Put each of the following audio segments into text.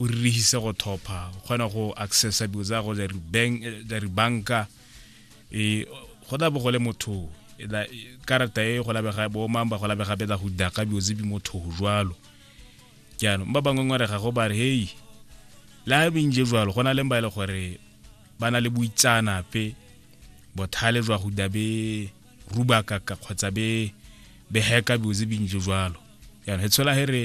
o ririhise go thopha o kgona go accessa dilo tsa go tsa ribanka e go tla bo go le motho e karata e go labega bo mang ba go labega betsa go daka dilo tse di motho jwalo jaanong ba bangwe ngware ga go ba re hei le a bintse jwalo go na leng ba e le gore ba na le boitsanape bothale jwa go da be rubakaka kgotsa be be heka dilo tse bintse jwalo jaanong e tshola he re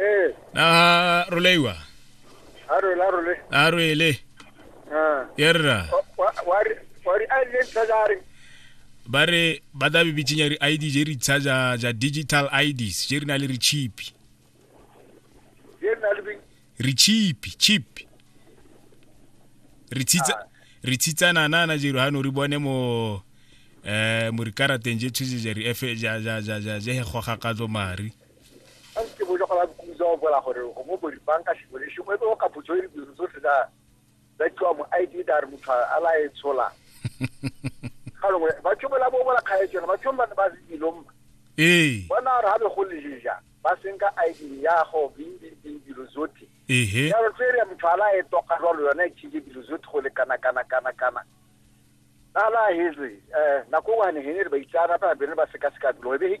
Eh, na roleiwa a role, a role. a roele Ah. yerra Wa- wa- wa re- wa re a ile ntlha ja re. ba re ba da be bitšenya re id je re tsha ja ja digital ids je re na le re chip Ye nna le bing. re chip chip re tshitsa re tshitsana nana je re ha no re bone mo eh mo re karateng je tshije je re efe ja ja ja ja je he goga ka tlo mari a se bo joga ba kuza o bola gore go mo bori banka se bole se mo e ka putso e di zo se da da twa mo ID da re motho a la e tshola ga longwe ba tshobela bo bola khae tsena ba tshomba ba se dilom eh bona ra be go leja ba senka ID ya go bing bing dilo zote ehe ya re tsere motho a la e toka jalo yone e tshile dilo zote go le kana kana kana kana ala hezwe eh nako wa ne hene ba itsana ba be ba seka seka dilo e be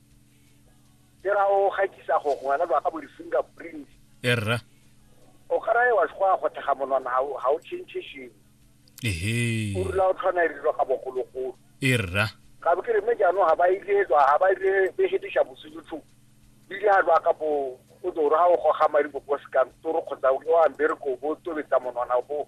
ke ra o gakisa go ngwana ba ga bo di-finger print e rra o kara e wa go a go thega monwana ga o change sheng ehe o rula o tlhona e dilo ga bogologolo e rra ga bo ke re mme jaanong ga ba ile tswa ga ba ile be hedisha bosutlhu bile ga ba ka bo o toro ga o goga madi bo bo sekantoro kgotsa o ke wa mbereko bo tobetsa monwana bo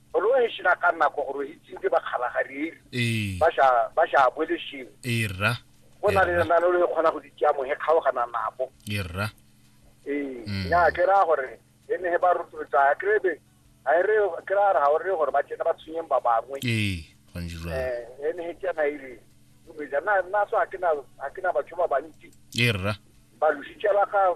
roheshi na ka nako go rohitsing ke bakgabagarieri ee. ba sha bolesheng ee, rra go na le na le le kgona go di tšea mohe kgaogana nabo ee, rra ee mm. ya ke ra gore e ne ba rotloetsa ke be a e re ke ra ra gore gore ba tsena ba tshwenyeng ba bangwe ee go ntse jwa eh e ne he tsena ile o be na na so a ke na a ke na batho ba bantsi ee, rra ba lositse ba ga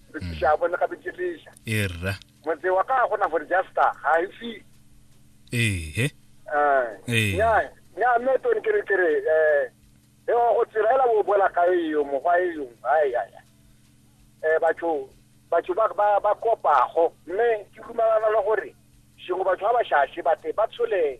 rekiša bone gape ke tliša e rra motse wa ka gona gore justa ga e fi ehe eh. ya ya me to ni kere kere eh e go tsirela bo bola ka e yo mo ga e yo ai ai eh batho batho ba ba ba kopa go mme ke dumalana le gore shingo batho ba ba shashi ba te ba tshole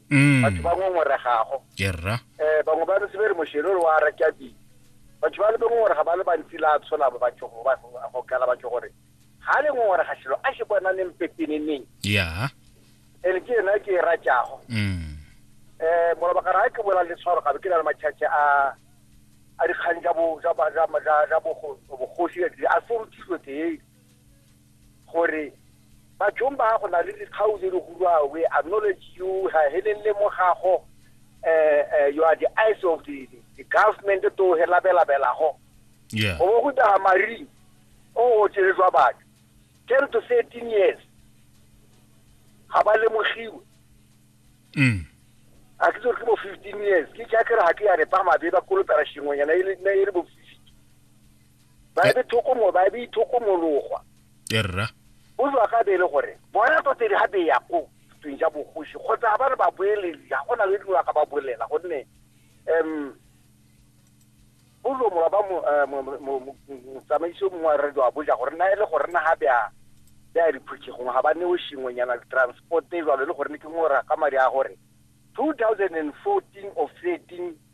Mm. batho ba ngongoregago kerra um bangwe ba ntse ba re mošelo le wa rakabile batho ba le ba ngongoraga ba le bantsi la tshola ba batho go ba- go kala batho gore ga le ngongorega selo a se bonaneng pepeneneng ya ene ke ena ke e ratšago Mm. um molabakara ga ke bola le tshwaro gabe ke na le matšhatšhe a a dikgang tsa bo- tsa ba- tsa- tsa- tsa bogo- bogosi a serutilwe tee gore bathong ba go na le dikgau tse di gurwang we acknowledge you ga helelele mo gago um you are the eyes of the, the government to he labelabelago yeah. go bo go taga maring o o tšeletswa batho ten to thirteen years ga ba lemogiwe mm. a ke tsore ke bo fifteen years ke jaakere ga ke ya repa mabe ba kolopela sengwenyana e le e bo ba eh. be thokomo ba be ithokomologwa erra bozwa ka bele gore bona tota ga be ya ko tsweng ja bogosi kgotsa ba re ba boeledi ga go na le dingwa ka ba bolela gonne um bozwa mola ba eh, motsamaisi o mongwe wa radio a boja gore na e le gore na ga bea bea diphuthegong ga ba neo sengwenyana transport e jalo e le gore ne ke ngora ka madi a gore two thousand and fourteen or thirteen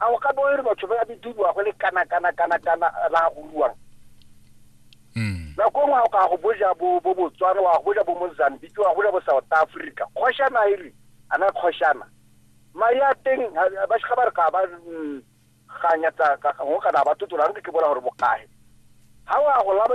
a o ka bo re batho ba bidiwa go le kana kana kana kana ba goluwang mm. nako ngwe o ka go boja bo bo botswana wa go boja bo mozambique wa go boja bo south africa kgoshana e re ana kgoshana mari a teng ba shiga ba re ka ba mm, ganya tsa ka go kana ba totola re ke bola gore bokae ha wa go laba